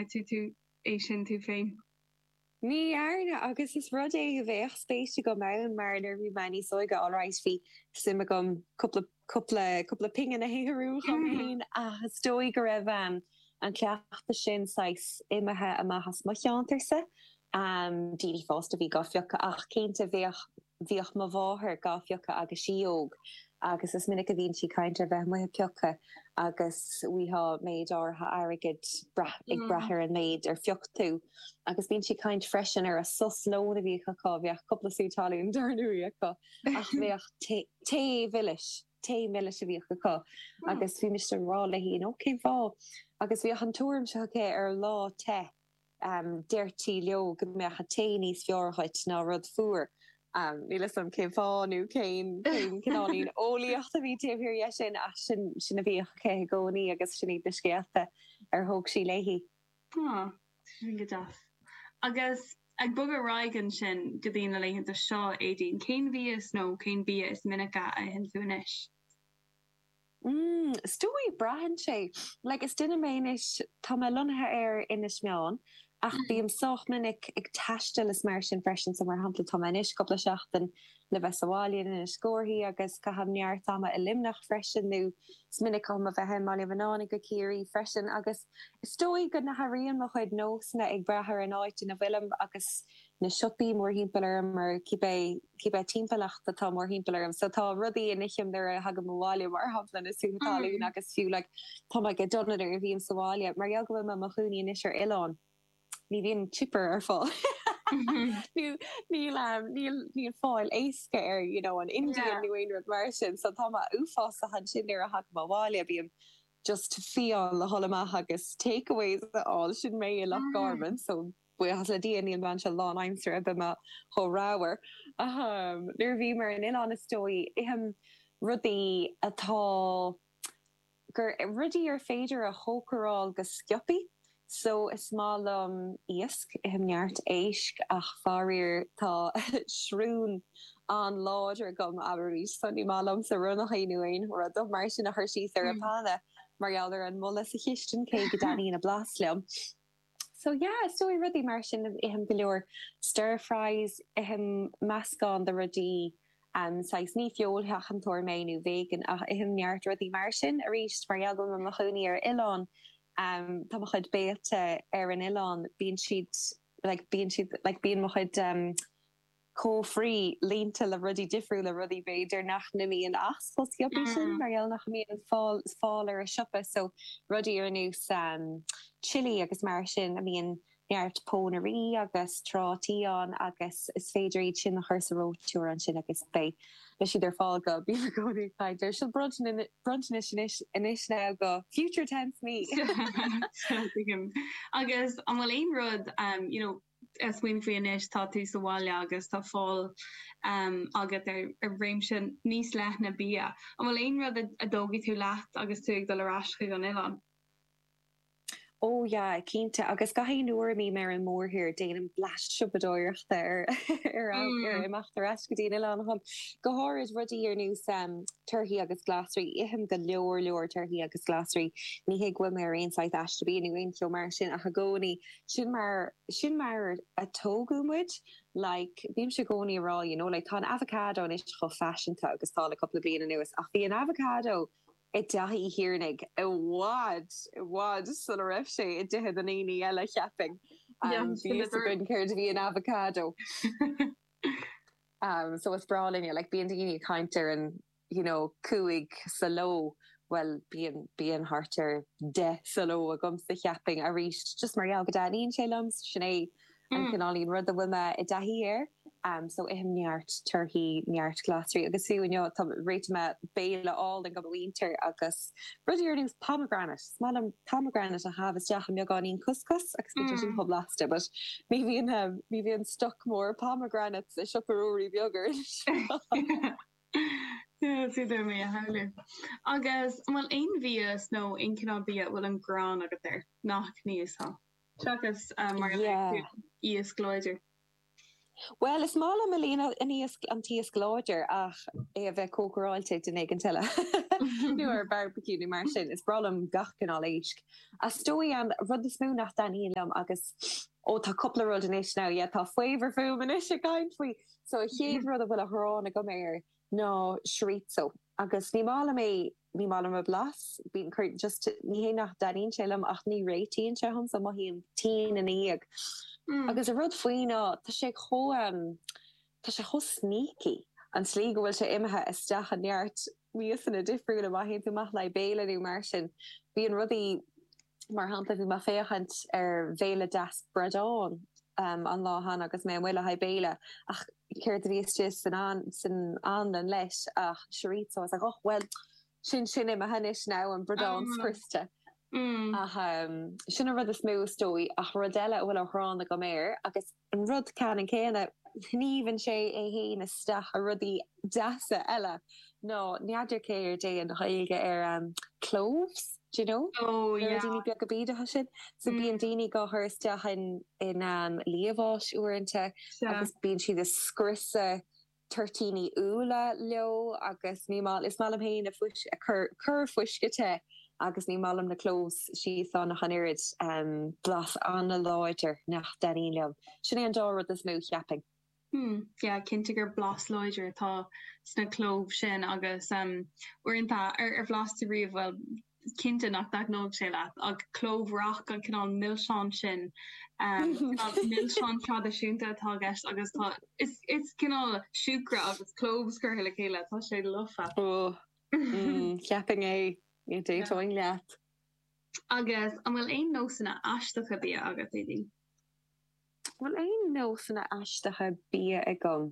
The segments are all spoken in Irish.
tú é sin tú féin. Ní dhearna, agus is rud é a bheadh spéis agam ann mar nuair a bhí mé níos óige alright bhí suim agam cúpla, cúpla, cúpla pingin a shaothrú dhom fhéin agus is dóigh go raibh an cleachtadh sin saghas imithe amach as mo cheantar-sa, daoine fásta a bhí gá phiocadh ach cinnte bheadh. Bhíodh mo mháthair dá bpiocadh agus sí óg agus is minic a bhíonn sí ag caint ar bheith amuigh ag piocadh agus bhíodh méid áirithe airgid ag brath ar an méid ar phioc tú agus bíonn sí ag caint freisin ar a sos lóin a bhíodh acu, bheadh cúpla sú talún dar ndóigh acu ach bheadh tae mhilis, tae milis a bhíodh acu agus bhí mise ag rá léi you know cén fáth agus bhíodh an tuairim seo aici ar lá te Deirtí leo go mbeadh an tae níos fearr dhuit ná rud fuar. Níl 'fhios a'm cén fáth nó cén cineál eolaíochta a bhí taobh thiar dhe sin ach sin, sin a bhíodh aici i gcónaí agus sin iad na scéalta ar thóg sí léi. Tá, tá sin go deas. Agus ag bogadh ar aghaidh ansin go dtí na laethanta seo, Éadaoin, cén mhias nó cén bia is minice a itheann tú anois? mm is dóigh, braitheann sé. Like is duine mé anois, tá mé lonnaithe ar Inis Meáin ach bím sách minic ag taisteal is mar sin freisin, so mar shampla tá mé anois cúpla seachtain le bheith sa bhaile in Inis Córthaidh agus caithim neart ama i Luimneach freisin nó is minic dom a bheith i mBaile Bhuinneánaigh i gCiarraí freisin agus is dóigh go n-athraíonn mo chuid nósanna ag brath ar an áit ina bhfuilim agus na siopaí mórthimpeall orm, nó cibé, cibé timpeallacht atá mórthimpeall orm. So tá rudaí a n-ithim nuair a thagaim abhaile, mar shampla, na sútha talún agus fiú, like, tá mé go dona nuair a bhím sa bhaile. Mar gheall go bhfuil mé i mo chónaí anois ar oileán, ní bhíonn chipper ar fáil, nó níl, níl, níl fáil éasca air, you know, an Indian nó aon rud mar sin. So tá mé uafásach ansin nuair a thagaim abhaile, bím just fiáin le dhul amach agus takeaways a fháil, sin mé i Loch Garman, so. Buíochas le Dia, níl mé anseo lánaimsire, bheadh mé chomh ramhar. Nuair a bhím ar an oileán is dóigh, ithim rudaí atá. gur, rudaí ar féidir a chócaráil go sciobtha. So, is maith liom iasc, ithim neart éisc, ach faraor tá srón an-láidir agam, abraimís, so ní maith liomsa ronnachaí nó aon rud mar sin a chur síos ar an bpanna mar gheall ar an mboladh sa chistin, cé go dtaitníonn a blas liom. So yeah, is dóigh rudaí mar sin, ithim go leor stir fries, ithim meascán de rudaí, em, saghas, ní feoilséantóir mé nó vegan ach ithim neart rudaí mar sin, aríst, mar gheall go bhfuil mé i mo chónaí ar oileán, em, tá mo chuid béilí ar an oileán, bíonn siad, like, bíonn siad, like, bíonn mo chuid, em, cófraí líonta le rudaí difriúla, rudaí b'fhéidir nach mbíonn ar na siopaí sin mar gheall nach mbíonn fáil ar an siopa, so rudaí ar nós chilli agus mar sin ina mbíonn neart pónairí agus trátaí ann agus is féidir iad sin a chur sa reoiteoir ansin agus beidh siad ar fáil go, bím i gcónaí ag caint ar sin, bronntanais anois, anois now go future tense me! Tuigim. Agus an bhfuil aon rud you know. smaoiním faoi anois, tá tú sa bhaile agus tá fáil agat ar réimse níos leithne bia. An bhfuil aon rud a dtógfaidh tú leat agus tú ag dul ar ais chuig an oileán? Ó, yeah, cinnte. Agus gach aon uair a mbím ar an mórthír, déanaim bleaist siopadóireachta roimh imeacht ar ais go dtí an oileán. Go háirid, rudaí ar nós torthaí agus glasraí. Ithim go leor leor torthaí agus glasraí. Ní hé go bhfuil mé ar aon saghas aiste bia nó aon cheo mar sin, ach i gcónaí Sin mar, sin mar a tógadh muid. Like, bímse i gcónaí a' rá, you know, like, tá an avocado anois chomh faiseanta agus tá le cupla bliain anuas, ach bhí an avocado i dtithe Uí Thiarnaigh i bhfad, i bhfad sula raibh sé i dtithe na ndaoine eile, cheapfainn. Bhí a fhios againn céard a bhí in avocado. So is breá linne, like, bíonn daoine ag caint ar an. you know cúig sa ló, bhuel bíonn, bíonn thart ar deich sa ló agamsa cheapfainn, arís just mar gheall go dtaitníonn sé liom, sin é an cineáilín ruda a bhfuil mé i dtaithí air, em so ithim neart torthaí, neart glasraí agus fiú inniu, tá, réitigh mé béile álainn do mo mhuintir agus rudaí ar nós pomegranate, is maith liom pomegranate a shá isteach i mbeagáinín cuscus agus bíonn sé sin chomh blasta but ní bhíonn em ní bhíonn stoc mór pomegranates i siopa Ruairí Beag ar aon sráid. Is féidir mé a shamhlú. Agus an bhfuil aon mhias nó aon chineál bia a bhfuil an ghráin agat air nach n-íosfá? Seachas, mar a luaigh tú, iasc láidir. Bhuel, is maith liom fiú amháin an t-iasc láidir ach é a bheith cócaráilte ag duine éigint eile. Nó ar barbecue nó mar sin. Is breá liom gach cineál éisc. Ach is dóigh an rud is mó nach dtaitníonn liom agus, ó tá cúpla rud anois, now yeah tá faobhar fúm anois ag caint faoi, So an chéad rud a bhfuil an ghráin agam air ná chorizo agus ní maith liom é, ní maith liom an blas, bíonn cur, just ní hé nach dtaitníonn sé liom ach ní réitíonn sé dhomsa, mothaím tinn ina dhiaidh. Agus an rud faoi ná tá sé chomh, tá sé chomh sneaky an tslí go bhfuil sé imithe isteach i neart miasanna difriúla. Má théann tú amach le haghaidh béile nó mar sin, bíonn rudaí, mar shampla, bhí mé ag féachaint ar bhéile deas bradán an lá cheana agus mé amuigh le haghaidh béile ach céard a bhí istigh san san anlann leis ach chorizo. I was like, och, bhuel, sin sin é imithe anois now, an bradán scriosta. Ach sin an rud is mó is dóigh ach rud eile a bhfuil an ghráin agam air agus. An rud ceanann céanna, shníomhann sé é fhéin isteach i rudaí deasa eile. Nó n'fheadar céard é an Ghaeilge ar cloves, d'you know? Na ruidíní beaga bídeacha sin? So bíonn daoine á gcur isteach in liamháis uaireanta agus bíonn siad ag scriosadh toirtíní úlla leo agus ní mai, is maith liom féin a cur fuisce te agus ní maith liom na cloves síos ann ach an oiread, blas an-láidir nach dtaitníonn liom, sin é an dá rud is mó, a cheapfainn. Hmm, yeah, cinnte gur blas láidir atá sna cloves sin agus uaireanta, ar bhlas tú riamh, bhuel, is cinnte nach dtaitneoidh sé leat, ach clove rock, an cineál milseáin sin, cineál milseáin traidisiúnta atá i gceist agus tá, is, is cineál siúcra agus cloves curtha le chéile, tá sé lofa. Ó, mm, cheapfainn é, d'aontóinn leat. Agus an bhfuil aon nósanna aisteacha bia agat, Aedín? An bhfuil aon nósanna aisteacha bia agam?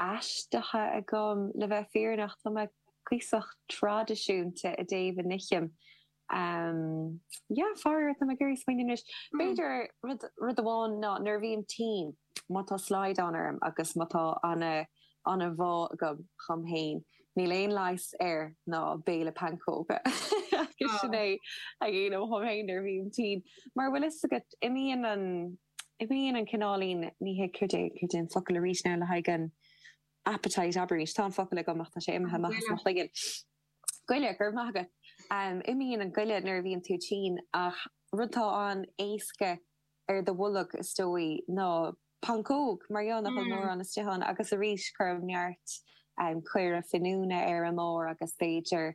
aisteacha agam, le bheith fírinneach. Tá mé cuíosach traidisiúnta i dtaobh a n-ithim. Yeah, faraor, tá mé ag iarraidh smaoineamh anois. B'fhéidir, rud amháin ná nuair a bhím tinn, má tá slaghdán orm agus má tá an-bhá agam dhom fhéin, níl aon leigheas air ná béile pancóga agus sin é a dhéanaim dhom fhéin nuair a bhím tinn. Mar an bhfuil 'fhios agat, imíonn an. Imíonn an cineáilín, ní hé cad, cad é an focal arís, ann le haghaidh an appetite, abraímis, tá an focal agam ach tá sé imithe amach as mo chloigeann, goile, go raibh maith agat! imíonn an goile nuair a bhíonn tú tinn ach rud atá an-éasca ar do bholg, is dóigh, ná pancóg, mar gheall nach bhfuil mórán istigh ann agus arís cuirim neart caora finiúna ar an mbarr agus b'fhéidir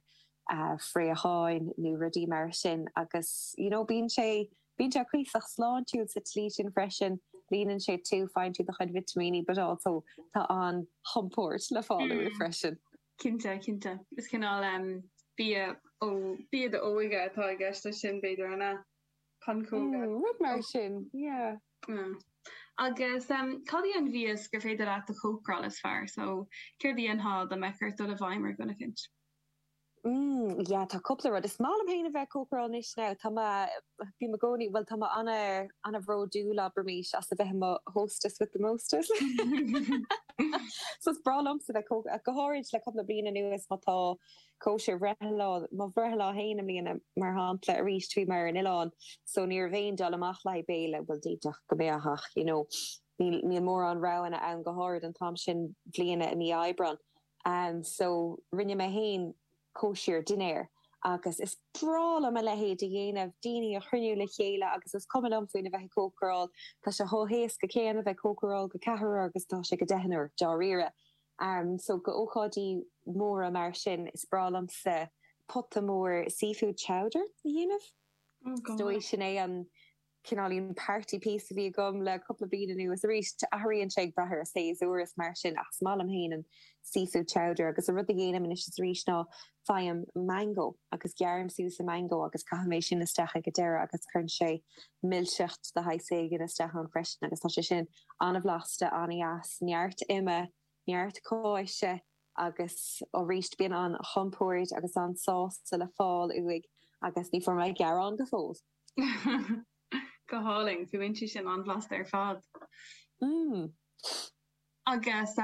fraocháin nó rudaí mar sin agus, you know, bíonn sé. Bíonn sé cuíosach sláintiúil sa tslí sin freisin, líonann sé tú, faigheann tú do chuid vitimíní but also tá an-chompóirt le fáil uaidh freisin. Cinnte, cinnte. Is cineál em. bia ó. bia d'óige atá i gceist leis sin, b'fhéidir, an ea? Pancóga? Mm, rud mar sin, yeah. Mm. Agus em. cad í an mhias gur féidir leat a chócaráil is fearr? So, céard a dhéanfá dá mbeadh ort dul i bhfeidhm ar dhuine eicint? mm yeah tá cúpla rud, is maith liom féin a bheith ag cócaráil anois now tá mé, bím i gcónaí bhuel tá mé ana ana bhródúil abraimis as a bheith i mo hostess with the mostest so is breá liomsa bheith cóc go háirid le cúpla bliain anuas má tá cóisir bhreithlá mo bhreithlá féin i mbliana mar shampla arís bhí mé ar an oileán so ní raibh aon dul amach le haghaidh béile bhuel d'fhéadfadh go mbeadh ach you know níl níl mórán roghanna ann go háirid an t-am sin bliana i mí Aibreán so rinne mé féin cóisir dinnéir agus is breá liom a leithéid a dhéanamh, daoine a chruinniú le chéile agus is cuma liom faoina bheith ag cócaráil, tá sé chomh héasca céanna bheith ag cócaráil do cheathrar agus atá sé do dheichniúr, dáiríre. So do ócáidí móra mar sin, is breá liomsa pota mór seafood chowder a dhéanamh, is dóigh sin é an. cineáilín party piece atá agam le cúpla bliain anuas, arís, athraíonn sé ag brath ar an séasúr is mar sin ach is maith liom féin an seafood chowder agus an rud a dhéanaim anois is arís ná faighim mango agus gearraim suas an mango agus caithim é sin isteach ag an deireadh agus cuireann sé milseacht de shaghas éigin isteach ann freisin agus tá sé sin an-bhlasta, an-deas, neart ime, neart cáise agus arís bíonn an-chompórd agus an-sástacht le fáil uaidh agus ní bhfuair mé gearán go fóill! Go hálainn. Fuaimníonn sé sin an-bhlasta ar fad. Agus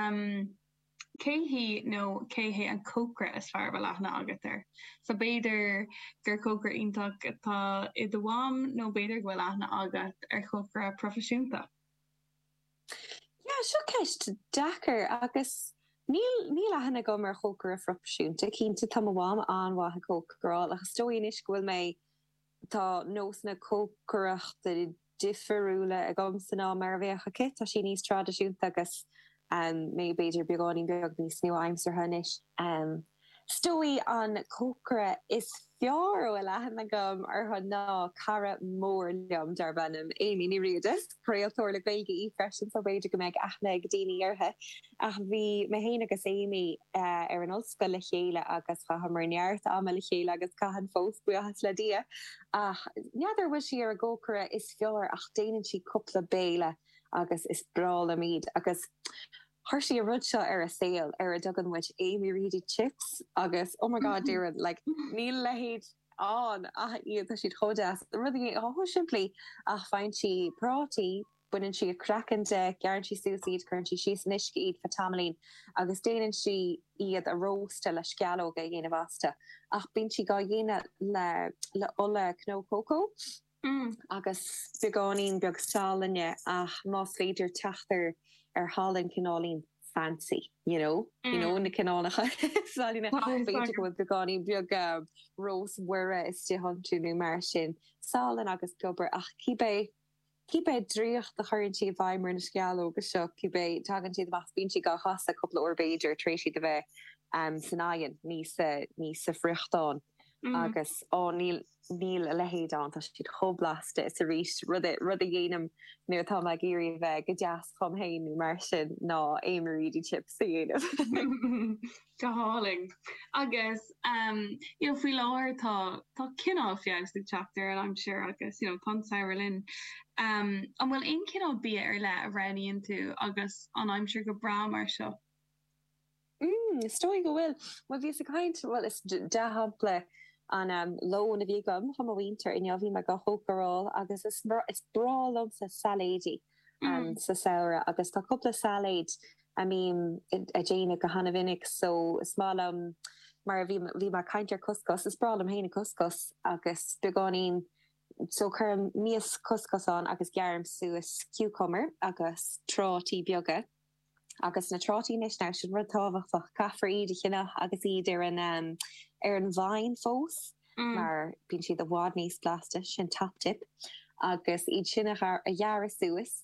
cé hí nó cé hé an cócaire is fearr a bhfuil aithne agat air? Sea, b'fhéidir gur cócaire iontach atá i do mham nó b'fhéidir go bhfuil aithne agat ar chócaire proifisiúnta. Sea, seo ceist deacair agus níl, níl aithne agam ar chócaire proifisiúnta. Cinnte tá mo mham an-mhaith ag cócaráil ach is dóigh anois go bhfuil mé Tá nósanna cócaireachta difiriúla ag agamsa ná mar a bheadh aici, tá sí níos traidisiúnta agus mé b'fhéidir beagáinín beag níos nua-aimseartha anois. Is dóigh an cócaire is fearr a bhfuil aithne agam orthu ná cara mór liom darb ainm Amy Ní Riada. Is craoltóir le Gaeilge í freisin so b'fhéidir go mbeidh aithne ag daoine uirthi. Ach bhí mé féin agus Amy ar an ollscoil le chéile agus chaitheamar neart ama le chéile agus caitheann fós, buíochas le Dia. Ach n'fheadar an bhfuil sí ar an gcócaire is fearr ach déanann sí cúpla béile agus is breá liom iad. Agus chuir sí an rud seo ar a' saol ar a dtugann muid Amy Reedy Chips agus oh my god déarfainn like níl a leithéid ann ach iad, tá siad chomh deas, rudaí chomh simplí, faigheann sí prátaí, baineann sí a craiceann de, gearrann sí suas iad, cuireann sí síos in uisce iad faoi tamaillín agus déanann sí iad a róstadh le sceallóga a dhéanamh astu ach bíonn sí dhá dhéanamh le le ola cnó cócó agus beagáinín beag salainne ach más féidir teacht ar ar shalann cineáilín fancy you know you know na cineálacha salainne b'fhéidir go bhfuil beagáinín beag rós Mhuire istigh iontu nó mar sin salann agus piobar ach cibé Cibé draíocht a chuireann sí i bhfeidhm ar na sceallóga seo, cibé, tagann siad amach is bíonn siad á gcasadh cúpla uair b'fhéidir tar éis iad a bheith san oigheann, ní sa, ní sa bhfriochtán. Agus, á, níl a leithéid ann, tá siad chomh blasta, is arís, ru- rud a dhéanaim nuair atá mé ag iarraidh a bheith go deas dhom fhéin nó mar sin, ná aon Maready Chips a dhéanamh. Go hálainn. Agus you know faoi láthair tá cineál feabhas ag teacht ar an aimsir agus you know tá an samhradh linn. An bhfuil aon cineál bia ar leith a roghnaíonn tú agus an aimsir go breá mar seo? Mm, is dóigh go bhfuil. Bhíos ag caint, dea-shampla an lón a bhí agam le mo mhuintir inniu, bhí mé ag cócaráil agus is is breá liomsa sailéidí sa samhradh agus tá cúpla sailéid a mbím a' déanamh go hana-mhinic so is maith liom mar a bhí, bhí mé a' caint ar couscous, is breá liom fhéin an couscous agus beagáinín, so cuirim mias couscous ann agus gearraim suas cucumber agus trátaí beaga agus na trátaí anois now sin rud tábhachtach, caithfear iad a cheannach agus iad ar an ehm, ar an vine fós mar bíonn siad i bhfad níos blasta, sin top tip agus iad sin a ghearradh suas,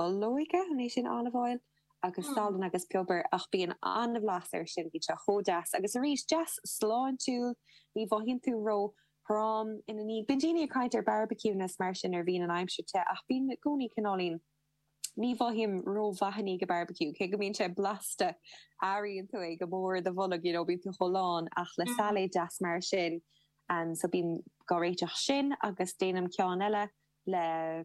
olóige, an é sin olive oil? agus salann agus piobar ach bíonn an-bhlas air sin, bíonn sé chomh deas agus arís, deas sláintiúil, ní mhothaíonn tú ró throm ina dhiaidh. Bíonn daoine ag caint ar bharbaiciúnna is mar sin nuair a bhíonn an aimsir te ach bím i gcónaí cineáilín, ní mhothaím ró-mhaith i ndiaidh an bharbaiciú, cé go mbíonn sé blasta, airíonn tú é go mór i do bholg you know, bíonn tú chomh lán ach le sailéad deas mar sin, so bím á réiteach sin agus déanaim ceann eile le.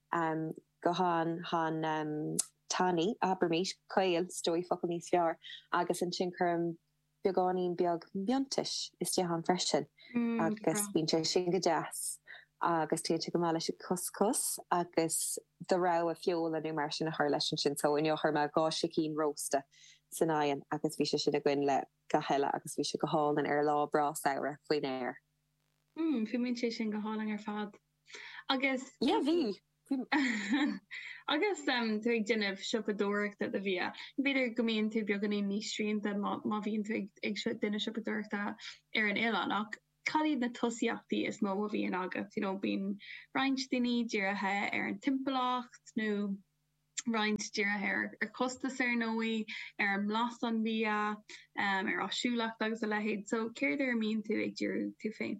am go han, han, tanaí, abraimid, caol, 's dóigh focal níos fearr, agus ansin cuirim beagáinín beag miontais istigh ann freisin agus bíonn sé sin go deas agus téann sé go maith leis an couscous agus do rogha feola nó mar sin a chur leis ansin, so inniu chuir mé dhá sicín rósta san oigheann agus bhí sé sin againn le gach rud eile agus bhí sé go hálainn ar lá breá samhraidh faoin aer. Mm, fuaimíonn sé sin go hálainn ar fad. Agus. Yeah, bhí! Agus tú ag déanamh siopadóireachta do bhia, b'fhéidir go mbíonn tú beagáinín níos srianta má má bhíonn tú ag déanamh siopadóireachta ar an oileán, ach cad iad na tosaíochtaí is mó a bhíonn agat? You know, bíonn roinnt daoine dírithe ar an timpeallacht nó roinnt dírithe ar ar chostas ar ndóigh, ar an mblas an bhia, ar áisiúlacht agus a leithéid. So céard air a mbíonn tú ag díriú tú féin?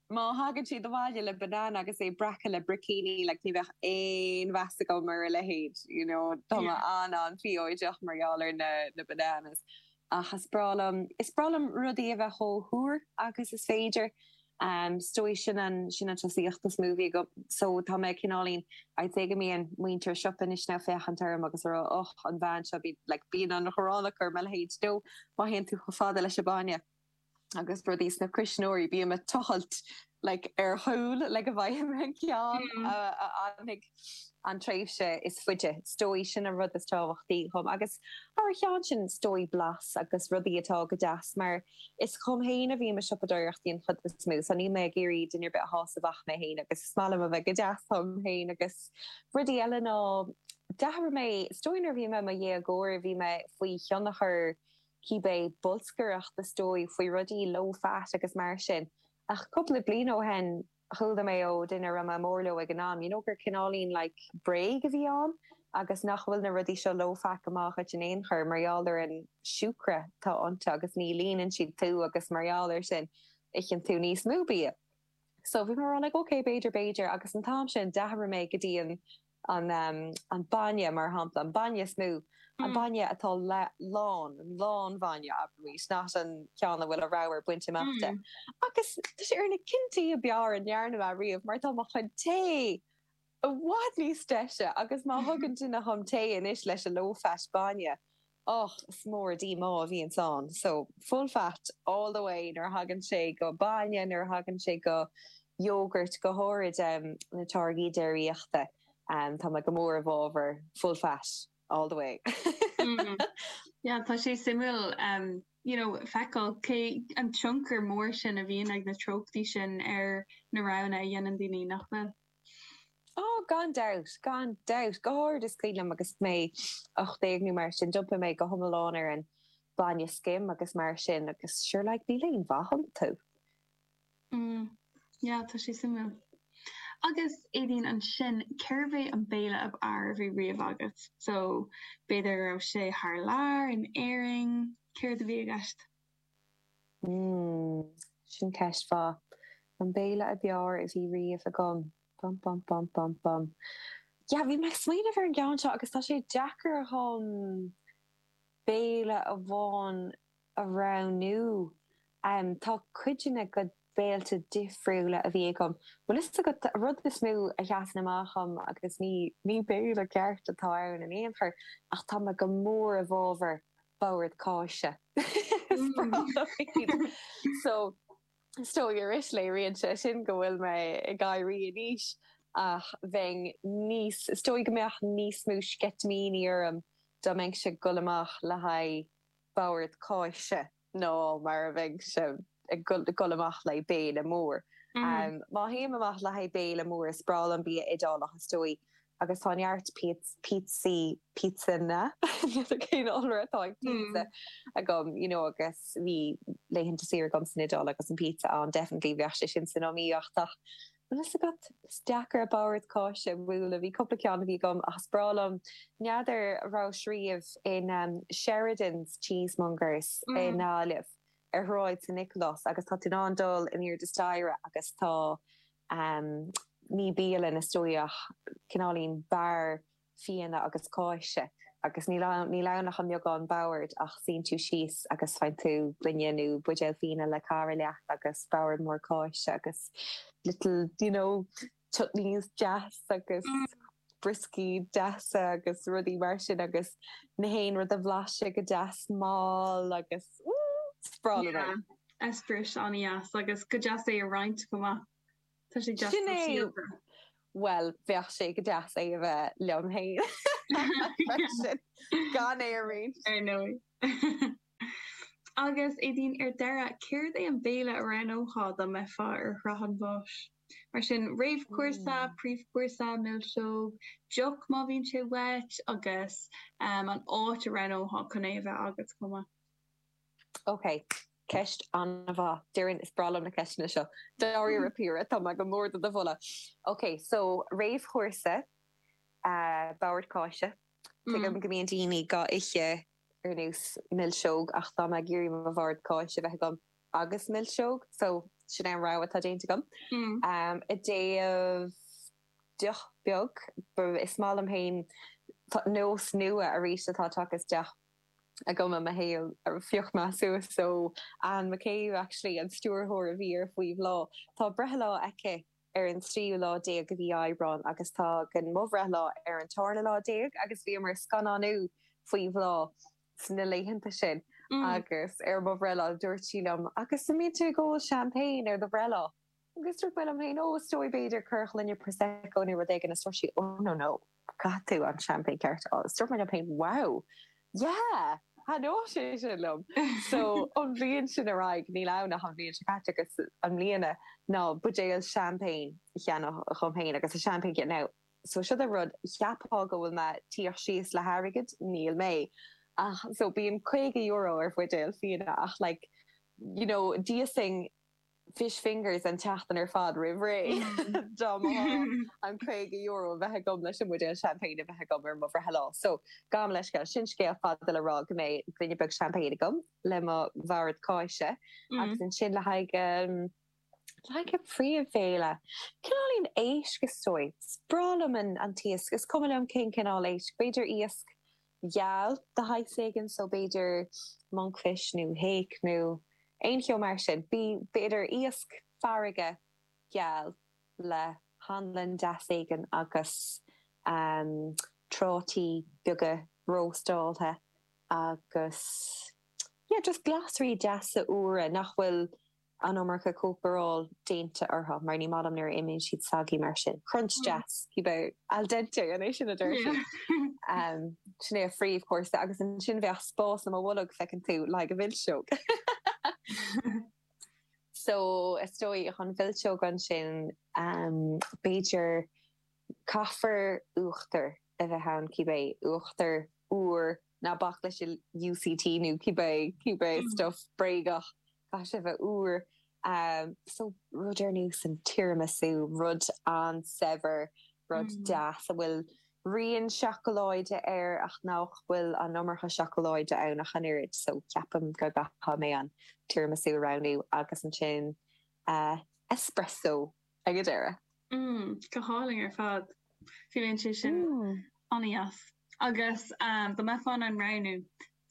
Má thagann siad abhaile le banana agus é breactha le bricíní, like, ní bheadh aon mheas agam ar a leithéid, you know, tá mé an-an-phiocach mar gheall ar na, na bananas. Ach is breá liom, is breá liom rudaí a bheith chomh húr agus is féidir. Is dóigh, sin an, sin an tosaíocht is mó a bhí agam. So, tá mé cineáilín, I'd say go mbíonn muintir an tsiopa anois ag féachaint orm agus a rá, Och, an bhean seo, bíonn, like, bíonn an ghráin acu ar mo leithéid. Nó, má théann tú chomh fada leis an bainne. agus rudaí sna cuisneoirí, bím a' tochailt like ar chúl le go bhfaighim an ceann a fhanfaidh an tréimhse is faide, is dóigh sin an rud is tábhachtaí dhom agus thar a cheann sin is dóigh blas agus rudaí atá go deas mar is dhom fhéin a bhím a' siopadoireachtaí an chuid is mó so níl mé ag iarraidh duine ar bith a shásamh ach mé fhéin agus is maith liom a bheith go deas dhom fhéin agus rudaí eile ná dearfaidh mé, is dóigh nuair a bhí mé i mo dhéagóir bhí mé faoi thionchar cibé bolscaireacht is dóigh faoi rudaí low fat agus mar sin ach cúpla bliain ó shin chuala mé ó dhuine a raibh mé mór leo ag an am you know gur cineáilín like bréag a bhí ann agus nach bhfuil na rudaí seo low fat go maith dhuit in aon chor mar gheall ar an siúcra atá iontu agus ní líonann siad tú agus mar gheall ar sin itheann tú níos mó bia. So bhí mé a rá like ok b'fhéidir, b'fhéidir agus an t-am sin d'athraigh mé go dtí an an an bainne mar shampla, an bainne is mó, an bainne atá le lán, an lán bhainne abraimid, not an ceann a bhfuil an ramhar bainte amach de. Agus tá sé ar na cinntí a b'fhearr a ndearna mé riamh mar tá mo chuid tae! I bhfad níos deise! Agus má thugann duine dhom tae anois leis an low fat bainne, och, is mór a' díomá a bhíonns ann. So, full fat all the way nuair a thagann sé go bainne, nuair a thagann sé go yogurt, go háirid na táirgí déiríochta, tá mé go mór i bhfábhar full fat all the way. Mm. Yeah, tá sé suimiúil you know feiceáil an tionchar mór sin a bhíonn ag na treochtaí sin ar na roghanna a dhéanann daoine, nach bhfuil? Ó, gan dabht, gan dabht. Go háirid, is cuimhin liom agus mé ocht déag nó mar sin, d'iompaigh mé go hiomlán ar an bainne scim agus mar sin agus sure like níl aon mhaith iontu. Mm, yeah, tá sé suimiúil. Agus, Éadaoin, ansin, cérbh é an béile ab fhearr a bhí riamh agat? So, b'fhéidir go raibh sé thar lear, in Éirinn, céard a bhí i gceist? Mmm, sin ceist mhaith. An béile a b'fheárr a bhí riamh agam. Bum bum bum bum bum. Yeah, bhí mé ag smaoineamh ar an gceann seo agus tá sé deacair dhom béile amháin a roghnú. Tá cuid de na, go béilte difriúla a bhí agam. Bhuel, is é an rud is mó a sheasann amach dhom agus ní béile ceart atá ann in aon chor ach tá mé go mór i bhfabhar bord cáise is breá liom so is dóigh arís léiríonn sé sin go bhfuil mé ag éirí in aois ach bheadh níos is dóigh go mbeadh níos mó sceitimíní orm dá mbeinnse ag dul amach le haghaidh bord cáise ná mar a bheinnse ag dul amach le haghaidh béile mór má théim amach le haghaidh béile mór is breá liom bia iodálach is dóigh Agus tá neart píotsas, píotsanna, n'fheadar cén iolra atá ag píotsa, agam, you know agus bhí laethanta saoire agam san Iodáil agus an píotsa ann, definitely bheadh sé sin san iomaíocht ach an bhfuil 's agat, is deacair bord cáise a bhualadh, bhí cúpla ceann a bhí agam ach is breá liom, n'fheadar a' rabhais riamh in Sheridan's Cheesemongers i nGaillimh, ar Shráid San Nicolás agus tá tú in ann dul in airde staighre agus tá amh, ní bialann é, is dóigh, ach cineáilín beár fíona agus cáise, agus níl ann ach an beagán bord, ach suíonn tú síos agus faigheann tú gloine nó buidéal fíona le cara leat agus bord mór cáise agus little, you know, chutneys deasa agus. brioscaí deasa agus rudaí mar sin agus chaon rud a bhlaiseadh go deas mall agus ooh! Is breá liom é. Yeah, eispéireas an-dheas agus go deas é a roinnt chomh maith. Tá sé deas sóisialta. Sin é! Bhuel, bheadh sé go deas é a bheith liom féin freisin, gan é a roinnt! Ar ndóigh. Agus, Aedín, ar deireadh, céard é an béile a roghnófá dá mbeifeá ar shraith an bháis? Mar sin, réamhchúrsa, príomhchúrsa, milseog, deoch má bhíonn sé uait, agus an áit a roghnófá chun é a bheith agat chomh maith. Ok, ceist an-mhaith. Déarfainn, is breá liom na ceisteanna seo. Dáiríre píre, tá mé go mór do do mholadh. Ok, so, réamhchúrsa, bord cáise. Tuigim go mbíonn daoine dhá ithe ar nós milseog ach tá mé ag iarraidh mo bhord cáise a bheith agam agus milseog so sin é an rogha atá déanta agam. I dtaobh deoch bheag, is maith liom féin nós nua arís atá tagtha isteach agam i mo shaol, phioc mé suas ó Anne McCabe actually, an stiúrthóir a bhí ar Faoi Bhláth, tá breithlá aici ar an tríú lá déag de mhí Aibreáin agus tagann mo bhreithlá ar an tárna lá déag agus bhíomar ag scannánú faoi bhláth sna laethanta sin agus ar mo bhreithlá dúirt sí liom Agus an mbíonn tú ag ól champagne ar do bhreithlá? Agus dúirt mé liom féin, Ó is dóigh, b'fhéidir, cúpla gloine, prosecco nó rud éigin agus dúirt sí, Oh no, no. Chaith tú an champagne ceart a ól. So dúirt mé liom féin wow! Yeah! Thaitneodh sé sin liom! So, ón bhliain sin ar aghaidh, níl ann ach an bhliain seo caite agus i mbliana, ná an buidéal champagne a cheannach dhom féin agus an champagne now, so siod an rud, cheapfá go bhfuil mé tíocht síos le hairgead, níl mé. Ach, so bíonn sé €50 ar bhuidéal fíona ach like, you know, d'íosfainn fish fingers an tseachtain ar fad roimh ré. Dá mba ghá an caoga euro a bheith agam leis an mbuidéal champagne a bheith agam ar mo bhreithlá. So, gabhaim leithscéal, sin scéal fada le rá go mbeidh gloine beag champagne agam le mo bhord cáise agus ansin le haghaidh, le haghaidh príomhbhéile, cineál éigin éisc is dóigh. Is breá liom an t-iasc, is cuma liom cén cineál éisc, b'fhéidir iasc. geal de shaghas éigin, so b'fhéidir monkfish nó hake nó aon cheo mar sin. B'fhéidir iasc farraige geal le hanlann deas éigin agus prátaí beaga róstáilte agus yeah, just glasraí deasa úra nach bhfuil an iomarca cócaireáil déanta orthu, mar ní maith liom nuair a imíonn siad soggy mar sin. Crunch deas, a bheith ann. Al dente, an é sin a deir siad? Sin é an príomhchúrsa agus ansin bheadh spás i mo bholg, feiceann tú, le haghaidh milseog! So, is dóigh, an mhilseog ansin, b'fhéidir, Caithfear uachtar a bheith ann cibé, uachtar úr, ná bac leis an UCT nó cibé, cibé stuif bréagach, caithfidh sé a bheith úr. So, rud ar nós an tiramisu, rud an-saibhir, rud deas a bhfuil rian seacláide air ach nach bhfuil an iomarca seacláide ann ach an oiread. So, ceapaim go gcaithfidh mé an tiramisu a roghnú agus ansin espresso. ag a deireadh. Mm, go hálainn ar fad. Bheadh sé sin an-dheas. Agus dá mbeifeá in ann roghnú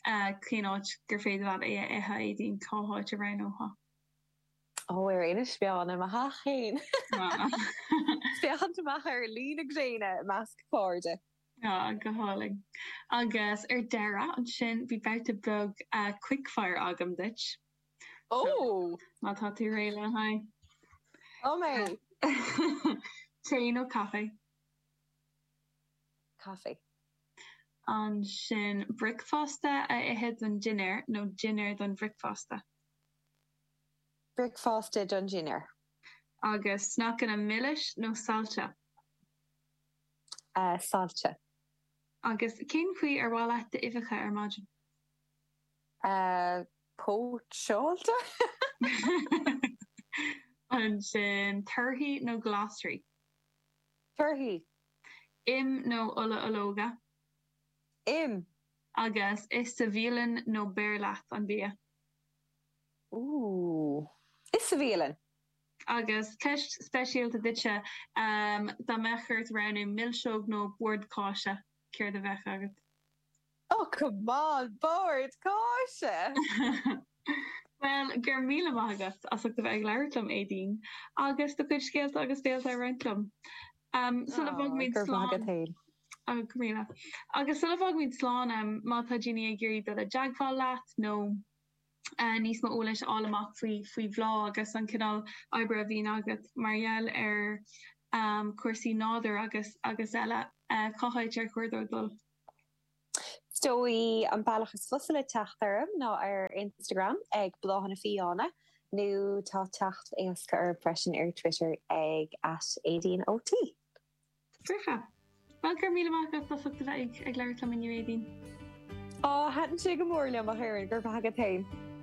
cén áit gur féidir leat é a ithe, Éadaoin, cá háit a roghnófá? Ó, ar Inis Meáin, i mo theach féin! Ag féachaint amach ar luí na gréine i measc cairde. Ó, go hálainn. Agus ar deireadh ansin, bhí babhta beag quickfire agam duit. Oh! Má tá tú réidh lena aghaidh. Tá mé! Tae nó caife? Caife. Ansin, bricfeasta a ithe don dinnéar nó dinnéar don bhricfeasta? Bricfeasta don dinnéar. Agus sneaiceanna milis nó saillte? Saillte. Agus cén chaoi ar mhaith leat d'uibheacha ar maidin? Póitseáilte. Ansin, torthaí nó glasraí? Torthaí. Im nó ola ológa? Im. Agus ithe sa bhialann nó beir leat an bia? Ooh. Ithe sa bhialann. Agus ceist speisialta duitse, dá mbeadh ort roghnú milseog nó bord cáise, céard a bheadh agat? Ó, come on, bord cáise! Bhuel, go raibh míle maith agat as ucht a bheith ag labhairt liom, Éadaoin, agus do chuid scéalta agus béilte a roinnt liom. Sula bhfágaimid slán, ó, go míle. Agus sula bhfágaimid slán, má tá daoine ag iarraidh dul i dteagmháil leat nó níos mó eolais a fháil amach faoi, faoi bhlag agus an cineál oibre a bhíonn agat mar gheall ar cúrsaí nádúir agus, agus eile, cá háit ar chóir dóibh dul? Is dóigh an bealach is fusa le teacht orm ná ar Instagram ag Bláthanna Fiáine, nó tá teacht éasca orm freisin ar Twitter ag @Éadaoin O T C. Bhuel, go raibh míle maith agat as ucht a bheith ag labhairt liom inniu, Éadaoin. Ó, thaitin sé go mór liom, a Dhoireann, go raibh maith agat fhéin.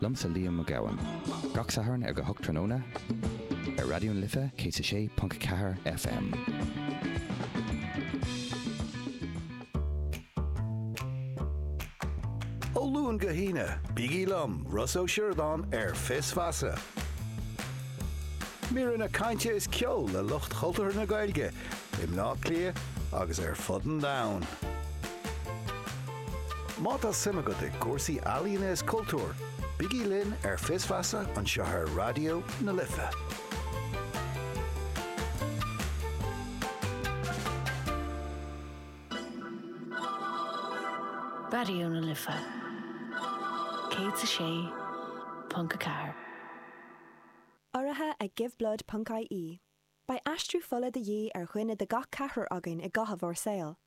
Liomsa Liam Mac Gabhann. Gach Satharn ag a hocht tráthnóna ar Raidió na Life 106.4 FM. Ó Luan go hAoine, bígí liom, Rossa Ó Sioradáin ar Fios Feasa. Míreanna cainte is ceol le lucht chultúrtha na Gaeilge i mBleá Cliath agus ar fud an domhain. Má tá suim agat i gcúrsaí ealaíne is cultúir, bígí linn ar Fios Feasa anseo ar Raidió na Life. Raidió na Life 106.4. Urraithe ag Giveblood ponc-IE, beidh aistriú fola de dhíth ar dhuine de gach ceathrar againn i gcaitheamh ár saol.